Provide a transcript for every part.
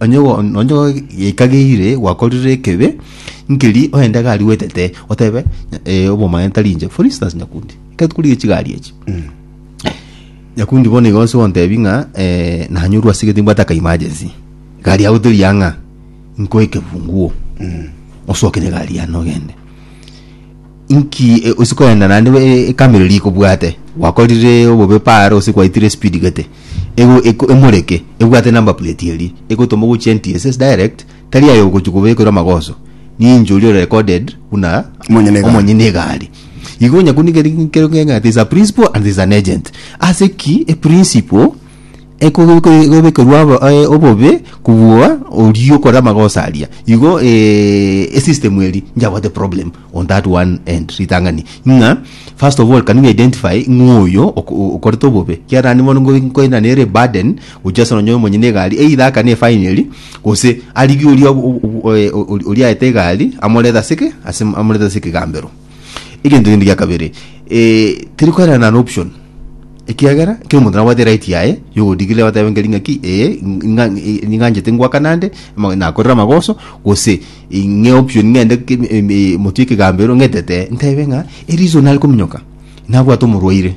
Onye gwa- nonye gwaikageire gwakorire ekebe nkeri oyende iga aria gwetete otebe eh, obomanene tari inche for instance nyakundi ekero korigia chigari echi nyakundi bono igo ase ogontebi ng'a eh, nanyorwa ase egete nimbwate aka emergency egari yago teri ang'a nkoe ekefunguo osoke negari yane ogende Inki e- ose koenda naende e- e- ekamero riria ikobwate gwakorire obobe paaro gose kwaitire speed gete ego eko emoreke ebwate number plate eria egotoma ogochia NTSS direct tari aye ogochia kobekerwa amagoso ninche oria ore recorded buna Omonyene egari. omonyene egari igo onye koniga ri- nkero ng'eng'e ati is a principal and is an agent ase ki a principal Ekobekerwa obobe kobua oria okore amagosa aria igo esystem eri njabwate problem on that one end ritang'ani ng'a first of all can we identify ng'a oyo okorete obobe ekiagera naende bono nkoirana nere burden gochia ase nonye omonyene egari either akane efine eria gose arigie oria oria oyaete egari amorete ase ki amorete ase ekegambero. Egento kende gia kabere, eh, teri koerana an option. Ekiagera, kera omonto nabwate right yaye, yogodigire batebe nkeri ng'aki, eh, ng'a- eh, ning'anchete ngwakana ande, ama- nakorire amagoso, gose ing'e option ng'ende ke- em- em- motwe ekegambero ng'etete, ntebe ng'a ereason nare kominyoka, nabwate omorwaire.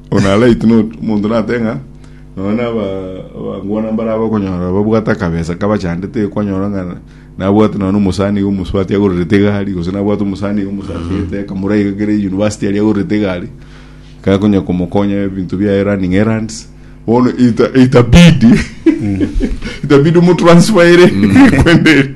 Ona right note, omonto natebe ng'a nonya na aba- abangwana mbare aba okonyora babwate akabesa kabachandete iga kwanyora ng'a nabwate nonya na omosani iga omosubati agorerete egari gose nabwate omosani iga omosasete akamura iga kere university aria agorerete egari gakonya komokonya ebinto biaye running errands bono ita- itabidi itabidi omotransfere kwende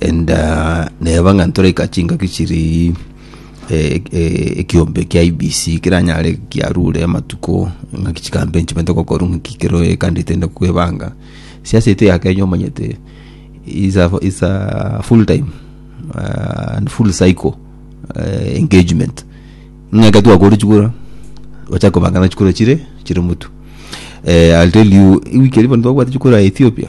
and ah, neba ng'a ntoraika chingaki chiri eh, eh, ekiombe kia ibc kiranyare kiarure amatuko ng'aki chikambe nchimete gokoru ng'aki kero kandi tende kwebanga siasa ito ya kenya omanyete is a, is a full time uh, and full cycle uh, engagement ng'aka twakore chikura ocha kobanga na chikura chire chire mutu eh, I'll tell you wiki eri bono twabwate chikura ya Ethiopia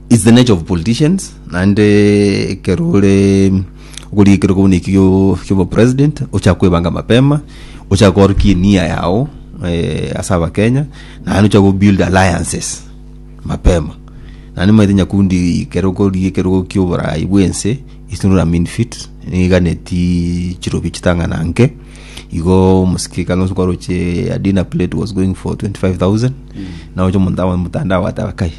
It's the nature of politicians naende ekero ore okorigekerwa kobuna eki gio- giobo president ochaka kwebanga mapema ochaka koorokia enia yao eh, ase abakenya naende ochaka kobuild alliances mapema naende nimaete nyakundi ekero okorigekerwa gokia oboraai bwense it's not a mean fit niganeti chirobi chitang'ana nke igo omosike kalonzo kwaroche a dinner plate was going for 25000 naocha omonto abone motandao ateba kai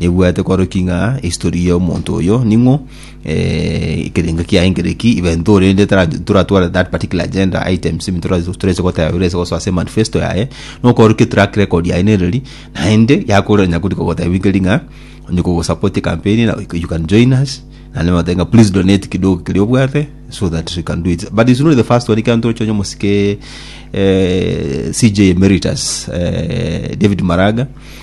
Nebwate koroki ng'a history ya omonto oyo ning'o, eh, ekerengo kiaye nkere ki, even though rende tara- toratware that particular agenda items ebi tora- torase goteba birase gosoa ase manifesto yaye, nokorokia track record yaye nereri, naende yakorire onye akorika goteba nkeri ng'a onye kogosupport ecampaign ena you can join us, naende nagoteba ng'a please donate kidogo keria obwate so that we can do it, but he's not the first one, ekero ntoche onye omosike eh CJ Emeritus eh David Maraga,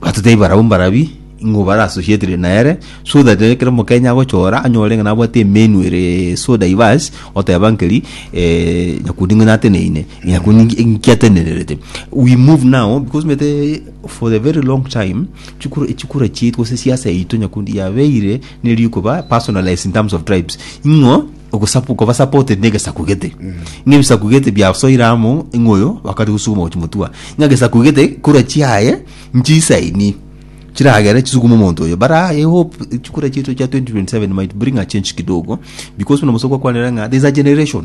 Batotebia barabwo mbarabi ing'o bare associated nere so that ekero omokenya agochora anyore ng'a nabwate emenu ere so diverse oteba nkeri eh, nyakundi ng'ina ateneine nyakundi nki- nki atenenerete we move now because omanyete for the very long time chikura echikura chiaito gose esiasa yaito nyakundi yabeire nerikoba personalized in terms of tribes ing'o Ogosapu koba supported negesaku gete. Ng'a ebisaku gete biasoire amo ng'a oyo bakare gosuguma gochi motua. Ng'a gesaku gete kura chiaye nchisaini chiragere chisugume omonto oyo. But I hope chikura chiaito chia 2027 might bring a change kidogo because buna Musa kwakwanire ng'a there's a generation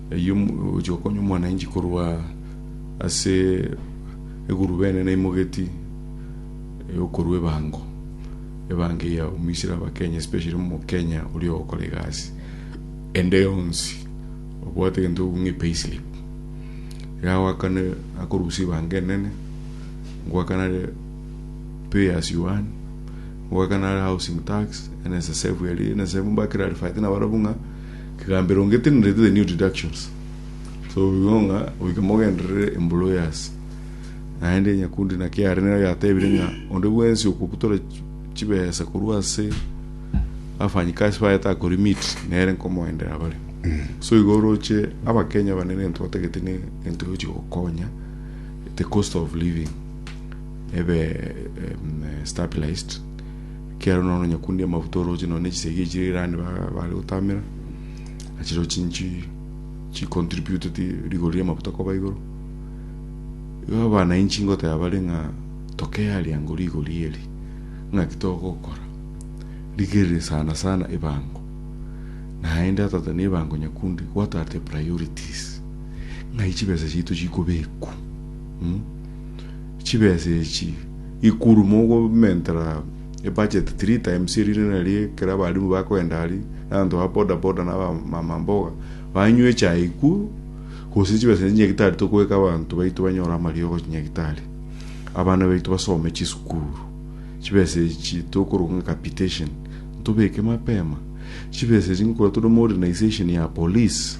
Eyio mogochia gokonya omwananchi korwa ase eguruba enene imogeti eyokorua ebango, ebango eye yaumisire Abakenya especially omokenya oria ogokora egasi ende yonsi obwate egento ekobua ng'a pay slip. Iga agoakana akorusia ebango enene, ngoakana are pay as you earn, ngoakana are housing tax, NSSF eria NSSF mbwakera are fighting nabarabwo ng'a. Kegambero ngetenenete the new deductions so igo ng'a goika mogenderere embura oye ase naende nyakundi naki yare nero yatebire ng'a onde bwensi okobutora chi- chibesa korwa ase abafanyikasi baye takorimit nere nkomoendera bare so igo oroche abakenya banene egento batagete ne egento gochi gokonya the cost of living ebe em, stabilised Ekiagera nonya nonyakundia amaguta orooche nonya nechisegi echire irani bare gotamera, nachireo chinchi chicontributeti rigori ri'amaguta koba igoro. Igo abanainchi ngoteba bare ng'a tokearia ango rigori eri, ng'aki togokora rigerere sana sana ebango. Naende otagete na ebango nyakundi, what are the priorities? Ng'ai chibesa chiaito chikobekwa? Chibesa echi ikuru mogomentera ebudget three times eri rinde nario ekero abalimu bakogenda aria na abanto ba boda boda na abamama mboga banywa echae ikuru gose chibesa echi chinyagitari tokoeka abanto baito banyore amariogo chinyagitari abana baito basome chisukuru chibesa echi tokoroka ng'a capitation ntobeke mapema chibesa echi nkogora tore modernization ya police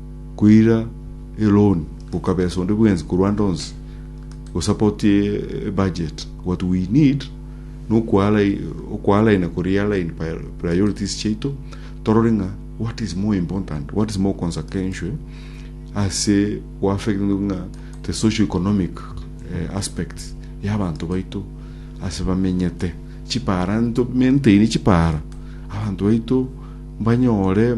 koira eloan gokabesa onde bwensi korwa ande onsi gosupport ebudget what we need nokwalaina korealign priorities chiaito torore ng'a what is more important what is more consequential ase goaffect ng'a the social economic uh, aspects y'abanto baito ase bamenyete chipara ntomaintaini chipara abanto baito mbanyore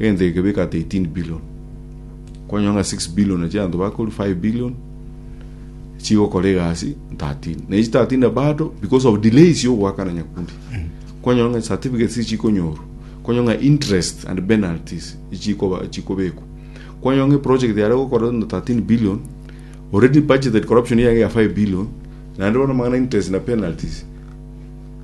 Egento eke beka ata 18 billion. Kwanyora ng'a 6 billion ya chianto bakorwa, 5 billion chigokora egasi 13. Na echi 13 na bado because of delays ya ogoakana nyakundi. Kwanyora ng'a certificates ichi chikonyorwa. Kwanyora ng'a interest and penalties ichikoba chikobekwa. Kwanyora ng'a project yare gokora na 13 billion already budgeted corruption yaye ya 5 billion naende bono amang'ana interest na penalties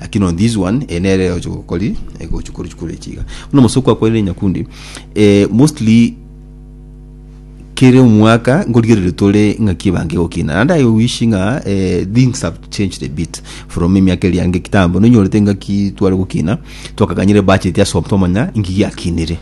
Lakini on this one eh, nere oche gokori eh, gochia kori chikoro echi iga buna omosoko akwerire nyakundi eh, mostly kere omwaka nkorigerere tore ng'aki ebange gokina and i wish ng'a eh, things have changed a bit from emiaka eri yange kitambo nonyorete ng'aki tware gokina twakaganyire budget ase omonto omanya inki giakinire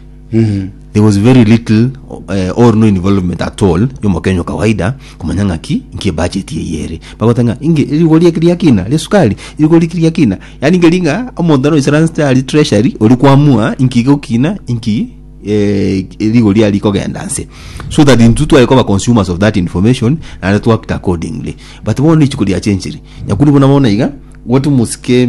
There was very little eh, or no involvement at all yomokenya kawaida komanya ng'aki nki budget eye ere bagotanga inge rigori eki ria kina ria sukari rigori eki ria kina yani inge ringa omonto ano isara nste ari treasury ori kwamua inki gokina inki eh, rigori ari kogenda nse so that intu twari koba consumers of that information naende twakta accordingly but bono ichiko ria chenchiri nyakuri bona bono iga gotu musike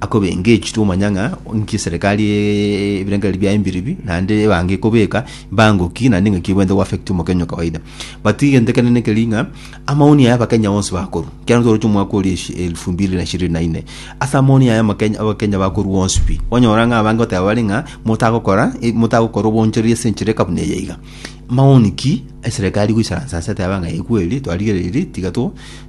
akobenga echitwe omanya ng'a inki eserekari ebirengererio biaye mbiribi naende ebange kobeka mbango ki naende ng'aki ebwenerete go affect omokenya o kawaida but egento ekenene keri ng'a amaoni aya abakenya bonsi bakorwa ekiagera nigo toroche omwaka oria eshi- elfu mbiri na ishirini na ine ase amaoni aya amakenya abakenya bakorwa bonsi pi onyora ng'a abange goteba bare ng'a motagokora e- motagokora obonchoreria ase enchera eka buna eye iga maoni ki eserekari egoisaransa ase eteba ng'a ekweeri twarigereiri tiga to.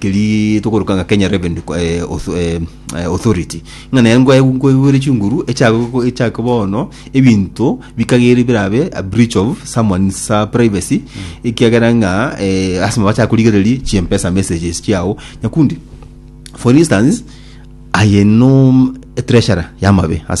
keria tokoroka ng'a Kenya Revenue Co- eh, Auth- eh, eh, Authority, ng'a naye ngwa- ngwaigwere chinguru echiago- echiake bono ebinto bikagere birabe a breach of someone's uh, privacy ekiagera ng'a eh, lasima bacha korigereria chimpesa messages chiao nyakundi for instance aye no treasurer yamabe ase